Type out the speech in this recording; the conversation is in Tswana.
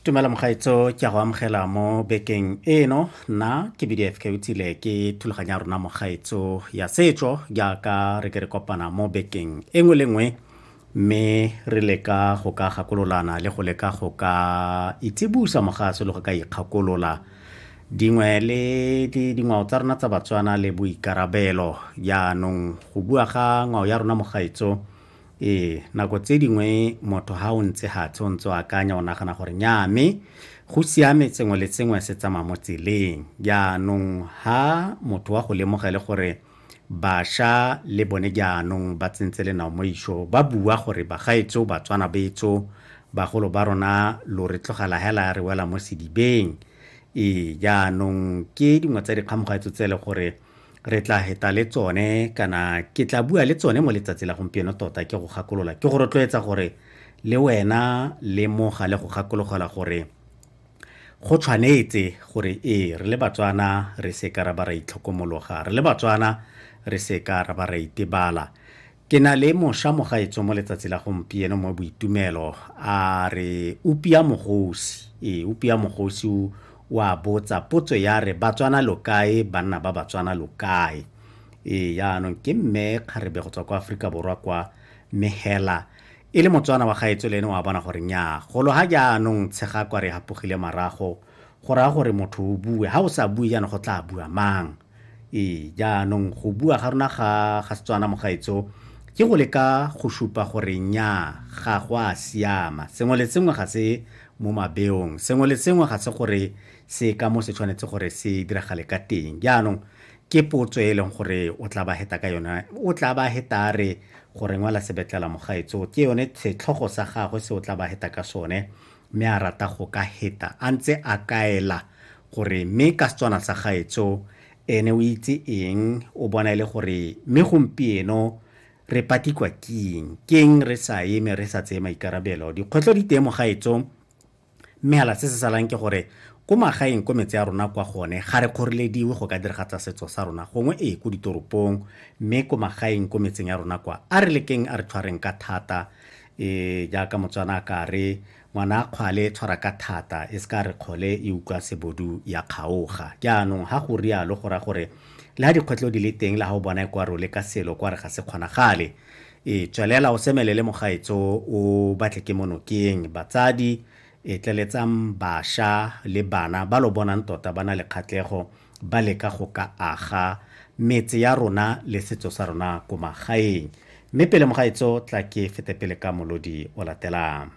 tumela mogaetso ke a go amogela mo bekeng eno nna ke bdf ke utsile ke thulaganya rona mogaetso ya setso jaaka re ke re kopana mo bekeng e nngwe le nngwe mme re leka go ka gakololana le go leka go ka itsibusa mogaso le go ka ikgakolola dingwe le dingwao tsa rona tsa batswana le boikarabelo jaanong go bua ga ngwao ya rona mogaetso Ee, nako tse dingwe motho ha o ntse gatshe o ntse o akanya o nagana gore nyaa mme go siame tsengwe le tsengwe se tsamaya mo tseleng jaanong ha motho wa go lemogele gore basha le bone jaanong ba tsentse lenao mo iso ba bua gore bagaetso batswana betso bagolo ba rona lo re tlogela hela re wela mo sedibeng ee jaanong ke dingwe tsa dikgamogaetso tse e le gore re tla heta le tsone kana ke tla bua le tsone mo letsatsi la gompieno tota ke go gakolola ke go rotloetsa gore le wena le moga le go gakologela gore go tshwanetse gore ee re le batswana re se ka ra ba ra itlhokomologa re le batswana re se ka ra ba ra itebala Ke na le mosha mogaetso mo letsatsi la gompieno mo boitumelo a re upia mogosi e upia mogosi o a botsa potso ya re batswana lokae banna ba batswana lokae e yaanong ke mme kgarebe go tswa kwa aforika borwa kwa mme hela e le motswana wa gaetso le ene wa bona gore nyaa golo ga jaanong tshega kwa re hapogile marago go raya gore motho o bue ga o sa bue jaanong go tla bua mang Ee, jaanong go bua ga rona ga ga Setswana mogaetso ke go leka go supa gore nya ga go a siama sengwe le sengwe ga se mo mabeong sengwe le sengwe ga se gore se ka mo se tshwanetse gore se diragale ka teng jaanong ke potso e leng gore o tla ba heta ka yone o tla ba heta re gore ngwala sebetlela mogaetso ke yone setlhogo sa gagwe se o tla ba heta ka sone mme a rata go ka heta a ntse a kaela gore mme ka Setswana sa gaetso ene o itse eng o bona e le gore mme gompieno re patikwa keng keng re sa eme re sa tseye maikarabelo dikgwetlho di teng mo gaetso mme hala se se salang ke gore ko magaeng ko metse ya rona kwa gone ga re kgorelediwe go ka diragatsa setso sa rona gongwe ee ko ditoropong mme ko magaeng ko metseng ya rona kwa a re lekeng a re tshwareng ka thata e jaaka motswana a ka re ngwana a kgwale e tshwara ka thata e se ka re kgole e utlwa sebodu ya kgaoga jaanong ga go rialo go raya gore le ga dikgwetlho di le teng le ga o bona e kwa role ka selo kwa re ga se kgonagale e tswelela o semelele mogaetso o batle ke monokeng batsadi e tleletsang basha le bana ba lo bonang tota ba na le kgatlego ba leka go ka aga metse ya rona le setso sa rona ko magaeng mme pele mogaetso tla ke fete pele ka molodi o latelang